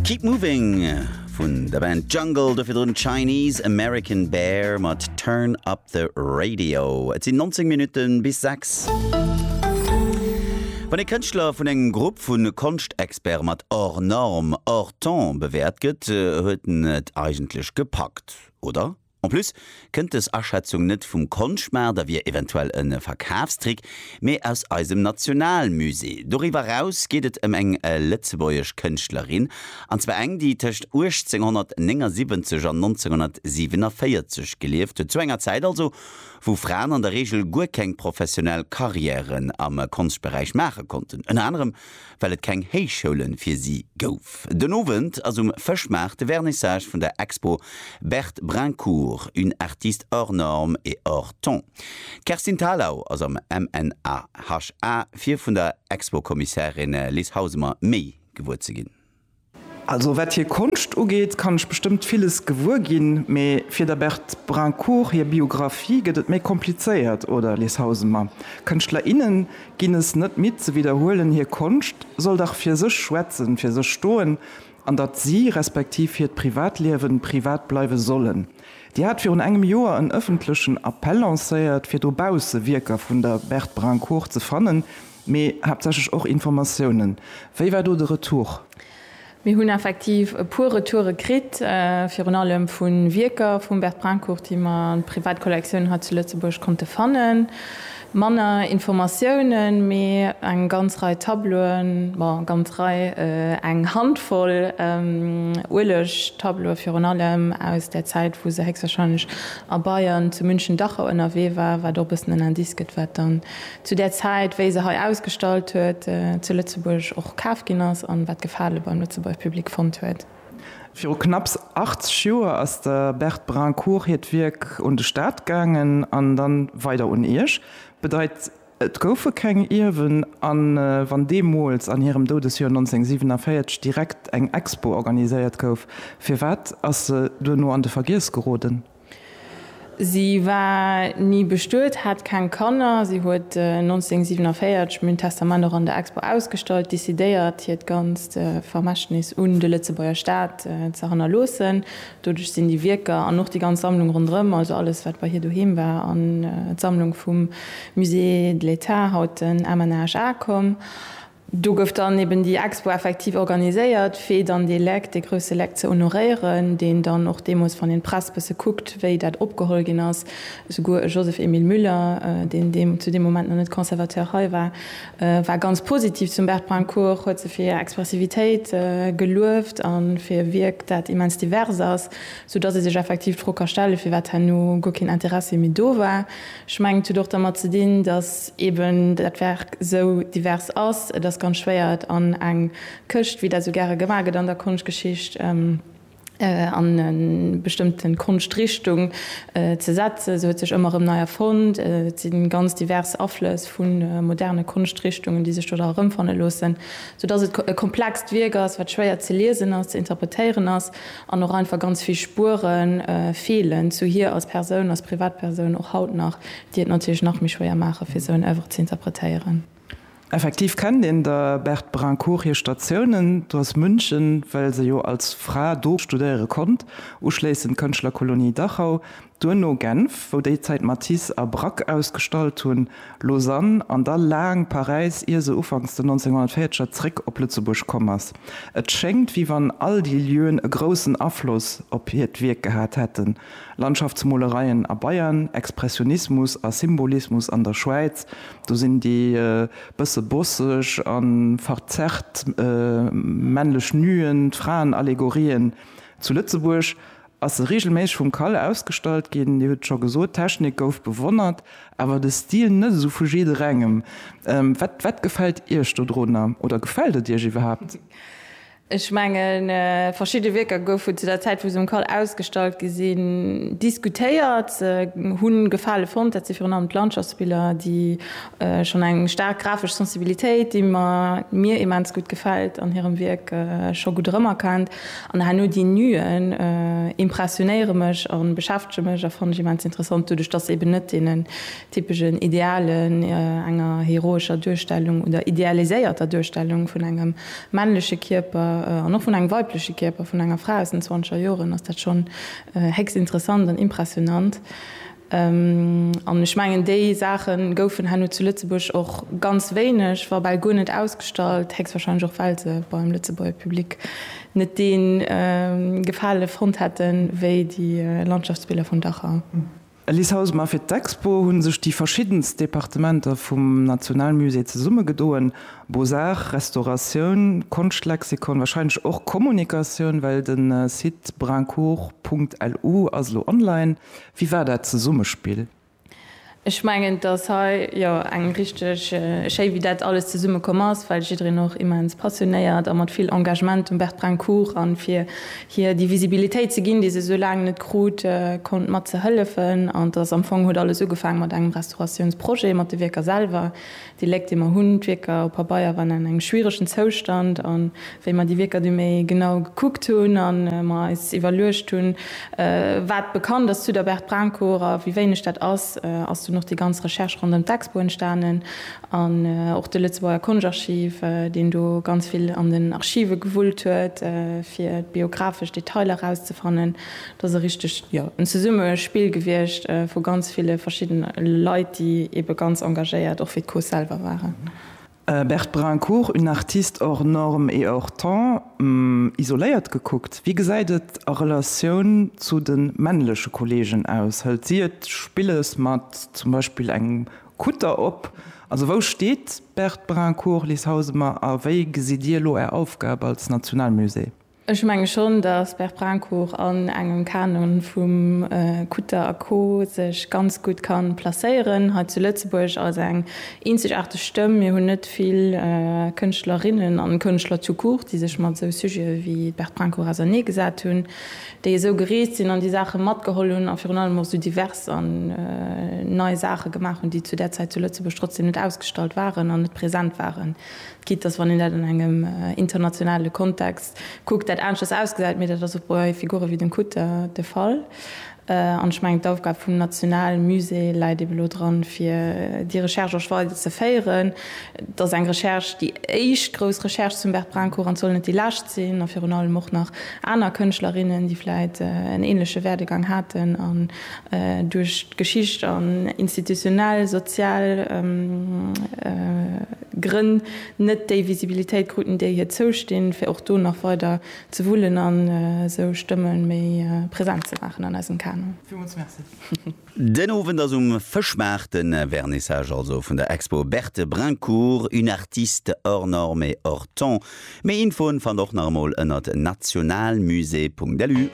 Keep Moving vun der Band Jungle, dofir drun Chinese American Bear mat Turn Up the Radio. Et sinn 19 Minutte bis 6. Wann e Kënschtler vun engem Grupp vu Konschtexperte mat hors norme, hors temps bewäert gëtt, huet en et eigentlech gepackt, oder? En plus kënnt dës Aschätzung net vum Konschtmaart a wier eventuell e Verkafstrick, mee aus eisem Nationalmusée. Doriwwer eraus geet et ëm eng lëtzebuergesch Kënschtlerin, an zwar eng, déi tëscht 1879 an 1947 gelieft huet, zu enger Zäit also, wou Fraen an der Reegel guer keng professionell Karriären am Konschtberäich maache konnten, ënner anerem well et keng Héichschoule fir si gouf. Den Owend ass um Fëschmaart de Vernissage vun der Expo Berthe Brincourt, une artiste hors norme et hors ton. D'Kerstin Thalau ass am MNAHA fir vun der Expo-Kommissärin Lis Hausemer méi gewuer ze ginn. Also wat hir Konscht ugeet, kann ech bestëmmt villes gewuer ginn, mee fir der Berthe Brincourt hir Biographie gëtt et méi komplizéiert, oder Liz Hausemer? Kënschtler, innen ginn es net midd ze widderhuelen, hir Konscht soll dach fir sech schwätzen, fir sech stoen, an datt si, respektiv hiert Privatliewen, privat bleiwe sollen. Dir hat virun engem Joer en ëffentlechen Appell lancéiert, fir dobausse Wierker vun der Berthe Brincourt ze fannen. Mee haaptsächlech och Informatiounen. Wéi war do de Retour? Mir hunn effektiv e puer Retoure kritt, virun allem vu Wierker vum Bert Brincourt, déi mer an privat Kollektioun hei zu Lëtzebuerg konnte fannen. Manner Informatiounen, mee eng ganz Rei Tableauen, bon, ganz Rei, eng Handvoll Ueleg-Tableaue virun allem aus där Zäit, wou se héchstwahrscheinlech a Bayern, zu München-Dachau ënnerwee war, wat och e bëssen en Indice gëtt, wat dann zu där Zäit, wéi se hei ausgestallt huet, zu Lëtzebuerg och kaf ginn ass an wat Gefale beim Lëtzebuerger Public fonnt huet. Viru knapps 80 Joer ass der Berthe Brincourt hiert Wierk un de Staat gaangen an dann weider un Iech. Bedeit, et goufe keng Ierwen. An wann deemools, an hirem Doudesjoer 1947, direkt eng Expo organiséiert gouf, firwat ass se duerno an de Vergiess geroden? Si war ni bestuet, hat keng Kanner. Si huet 1947 mün Testament och an der Expo ausgestallt, decidéiert hiert ganzt Vermächtnis un de Lëtzebuerger Staat ze hannerloossen. Doduerch sinn déi Wierker an och déi ganz Sammlung ronderëm, also alles wat bei hir doheem war, an d'Sammlung vum Musée de l'État, haut den MNHA, komm. Do gouf dann eben déi Expo effektiv organiséiert, fir dann dee Leck, dee grousse Leck ze honoréieren, deen dann och deemools, wann een d'Press bësse kuckt, wéi dat opgeholl ginn ass, souguer e Joseph-Emile Müller, deen deem zu deem Moment nach net Conservateur hei war, war ganz positiv zum Bert Brincourt, huet se fir hir Expressivitéit gelueft a fir e Wierk, dat immens divers ass, soudatt ee sech effektiv d'Fro ka stellen, firwat herno guer keen Interessi méi do war. Ech mengen, et huet och dermat ze dinn, datt eeben dat Werk esou divers ass. Et ass ganz schwéier, et an eng Këscht, wéi dat esou gäre gemaach gëtt an der Konschtgeschicht, an e bestëmmte Konschtrichtung ze setzen. Se huet sech ëmmer erëm nei erfonnt. Et si ganz divers Aflëss vu moderne Konschtrichtungen, déi sech do da erëmfanne loossen, soudatt et e komplext Wierk ass, wat schwéier ze liesen ass, ze interpretéieren ass. An och einfach ganz vill Spuere feelen zu hir als Persoun, als Privatpersoun och haut nach, déi et natierlech nach méi schwéier maachen, fir esou en Œuvre ze interpretéieren. Effektiv kennt een der Berthe Brincourt hir Statiounen, d'Oise München, well se jo als Fra do studéiere konnt, uschléissend d'Kënschtlerkolonie Dachau, Duerno Genf, wou déi Zäit Matisse a Braque ausgestallt hunn, Lausanne an da laang Paräis, ier se ufanks den 1940er zréck op Lëtzebuerg komm ass. Et schéngt, wéi wann all déi Lieuen e groussen Afloss op hiert Wierk gehat hätten, Landschaftsmolereien a Bayern, Expressionismus a Symbolismus an der Schwäiz, do sinn déi bësse bosseg a verzerrt männlech Nuen, d'Fraenallegorien zu Lëtzebuerg ass e reegelméisseg vum Kalle ausgestallt ginn. Dir hutt scho gesot, d'Technik gouf bewonnert, awer de Stil net esou vu jidderengem. Wat wat gefält Iech dodrunner oder gefält et Iech iwwerhaapt? Ech mengen, verschidde Wierker goufen zu der Zäit, wou se um Kall ausgestallt gi sinn, diskutéiert. Se hunn Gefale fonnt. Dat si virun allem d'Landschaftsbiller, déi Ech hunn eng staark grafesch Sensibilitéit, déi mir immens gutt gefält an hirem Wierk scho gutt erëmerkennt. An herno déi Nuen impressionéiere mech a beschäftege mech a fannen ech immens interessant, doduerch datt se eben net deenen typeschen Idealen, enger heroescher Duerstellung oder idealiséierter Duerstellung vun engem männleche Kierper an och vun engem weibleche Kierper vun enger Fra aus den zwanzeger Joren, ass dat schonn héchst interessant an impressionant. An ech mengen, déi Saache goufen herno zu Lëtzebuerg och ganz wéineg, wa bal guer net ausgestallt, héchstwahrscheinlech och well se beim Lëtzebuerger Public net dee Gefale fonnt hätten, wéi déi Landschaftsbiller vun Dachau. Alice Hausemer, Fir d'Expo hu sech déi verschiddenst Departementer vum Nationalmusée zesummegedoen, Beaux-Arts, Restauratioun, Konschtlexikon, wahrscheinlech och Kommunikatioun, well de Site brincourt.lu ass elo online. Wéi war dat Zesummespill? Ech mengen, dass hei jo eng richteg schéi, wéi dat alles zesumme komm ass, well jiddereen och immens passionéiert a mat vill Engagement dem Bertbrencourt a fir hir déi Visibilitéit ze ginn, déi se esou laang net krut, konnt mat ze hëllefen. An dass am Fong huet alles ugefaange mat engem Restauratiounsprojet, mat de Wierker selwer. Déi Léck, déi mer hunn, d'Wierker op Pabeier waren an engem schwieregen Zoustand. A wéi mer déi Wierker du méi genau gekuckt hunn a mer eis iwwerluecht hunn, wat bekannt ass zu der Berthe Brancor a wéi wéineg dat ass, ass dunn och déi ganz Recherche ronderëm d'Expo entstanen an och de Lëtzebuerger Konschtarchiv, deen do ganz vill an den Archive gewullt huet, fir biographesch Detailer erauszefannen. Dat ass e richteg, jo, en Zesummespill gewiescht vu ganz ville verschiddene Leit, déi eebe ganz engagéiert och fir d'Cause selwer waren. Berthe Brincourt, Une artiste hors norme et hors temps, isoléiert gekuckt, wéi gesäit et a Relatioun zu de männleche Kolleegen aus? Hëlt si et spillesch mat zum Beispill engem Kutter op? Also wou steet d'Berthe Brincourt, Liz Hausemer, a wéi gesitt Dir elo Är Aufgab als Nationalmusée? Ech menge schonn, datt Berprancourt an engem Kanon vum Kutter a Co sech ganz gutt ka placéieren hei zu Lëtzebuerg als eng eenzegaarteg Stëmm. Mir hunn net vill Kënschtlerinnen an Kënschtler tout court, déi sech mat esou Sujete wéi d'Berprancourt auserneegesat hunn, déi esou gereest sinn an déi Saache matgeholl hunn a virun allem och esou divers an nei Saache gemaach hunn, déi zu där Zäit zu Lëtzebuerg trotzdeem net ausgestallt waren an net present waren. Quitte dass, wann een dat an engem internationale Kontext kuckt, dat aneschters ausgesäit, mee dat ass och bei Figure wéi dem Kutter de Fall. An ech mengen, d'Aufgab vum Nationalmusée läit eben elo dran, fir déi Recherche och weider ze féieren. Et ass eng Recherche, déi éischt grouss Recherche zum Bert Brincourt, an et soll net déi lescht sinn. A virun allem och nach aner Kënschtlerinnen, déi vläicht en änleche Werdegang haten a duerch d'Geschicht an institutionell, sozial Grënn net déi Visibilitéit kruten, déi hir zoustinn, fir och do nach weider ze wullen an esou Stëmme méi present ze maachen an eisem Kanu. Villmools Merci. Den Owend ass um Fëschmaart de Vernissage also vun der Expo Berthe Brincourt, une artiste hors norme et hors temps. Méi Infoen fannt och nach emol ënnert nationalmusée.lu.